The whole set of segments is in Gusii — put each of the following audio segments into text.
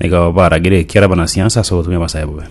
Nigo baragire ekiara abanasiasa ase obotumia bwa Nyasae bobe.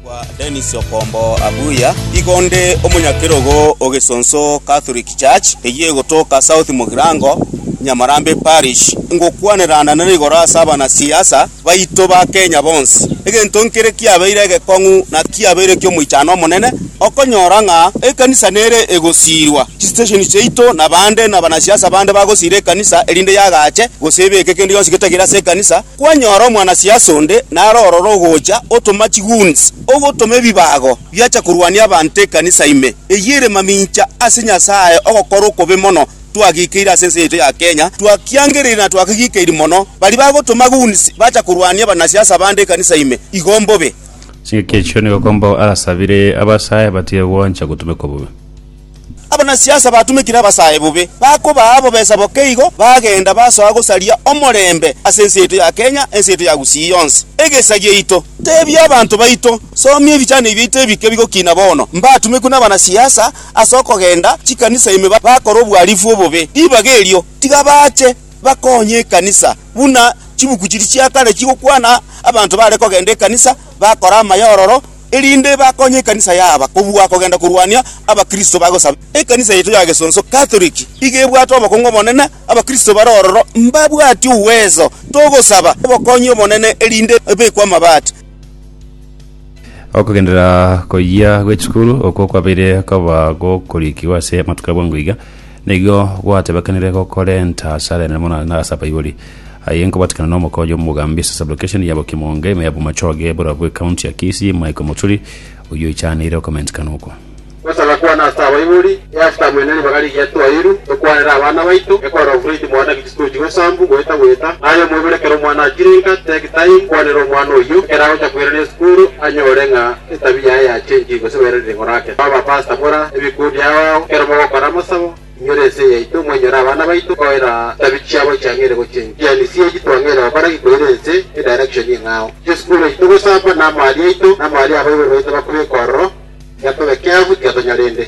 Kwa Dennis Okombo Abuya, igo nde omonyakerogo o Gesonso Catholic Church eyio egotoka South Mugirango, Nyamarambe Parish. Ngokwanerana na rigoro ase abanasiasa baito ba Kenya bonsi. Egento nkere kiabeire egekong'u na kiabeire ki'omoichano omonene. Okonyora ng'a ekanisa nere egosiirwa, chisitesheni chiaito na bande na banasiasa bande bagosiira ekanisa erinde yagache, gose ebeke kende gionsi getagire ase ekanisa, kwanyora omwanasiasa onde nare ororo ogocha otoma chigoons, ogotoma ebibago biacha korwania abanto ekanisa ime, eyio ere mamincha ase Nyasaye ogokora okobe mono twagikeire ase ense yaito ya Kenya, twakiangereire na twakegikeiri mono, baria bagotoma goons bacha korwania banasiasa bande ekanisa ime, igo mbobe. Chingaki echio nigo Kombo arasabire abasae batige gwancha gotumekwa bobe. Abanasiasa batumekire abasae bobe bakobaa abobesa boke igo bagenda basoa gosaria omorembe ase ense yaito ya Kenya, ense yaito ya Gusii yonsi, egesa giaito. Tebia abanto baito, Somia ebichani biaito ebike bigokina bono, mbatumekwe nabanasiasa ase okogenda chikanisa ime bakore obwarifu obobe. Ribaga erio tiga bache. bakonye ekanisa, buna chibuku chiria chia kare chigokwana abanto bare kogenda ekanisa bakore amaya ororo, erinde bakonye ekanisa yaba kobua kogenda korwania abakristo bagosaba. Ekanisa yaito ya gesonso, Katoliki, iga ebwate obokong'u obonene, abakristo bare ororo mbabwati ugweso. Togosaba obokonyi obonene erinde ebekwe amabati. Okogenderera koyia gwe chikuru okwo kwabeire koba gokorikigwa ase amatuko a bwango iga. Nigo gwatebekanire gokorenta asare enene mono na ase abaibori. Aye nkobatikana na omoka oyo omogambi ase sublokesheni ya Bokimonge, ime ya Bomachoge, eburobua bwe county ya Kisii, Michael Muturi, oyio oichaneire okomentikana okwo. Gosaga kwane ase abaibori, eafter mwene ribaga rigiya twairu tokwanera abana baito, ekorora ofreti mwane. Tochia gosambu goeta goeta aye omoibore ekero omwana achire inka take time kwanera omwana oyio ekero agocha koirana esukuru anyore ng'a etabia yaye yachenchire gose bairane ring'oro ake Ba ba pastor bora ebikundi ao ao ekero mogokora amasabo inyore ense yaito mwenyore abana baito koira etabi chiabo chiang'eire gochenchia yani CAG twang'eire gokora ki koira ense edirection eng'ao esukuru yaito gosamba namari yaito namari abaibori baito bakobeka ororo tiga tobe careful tiga tonyore ende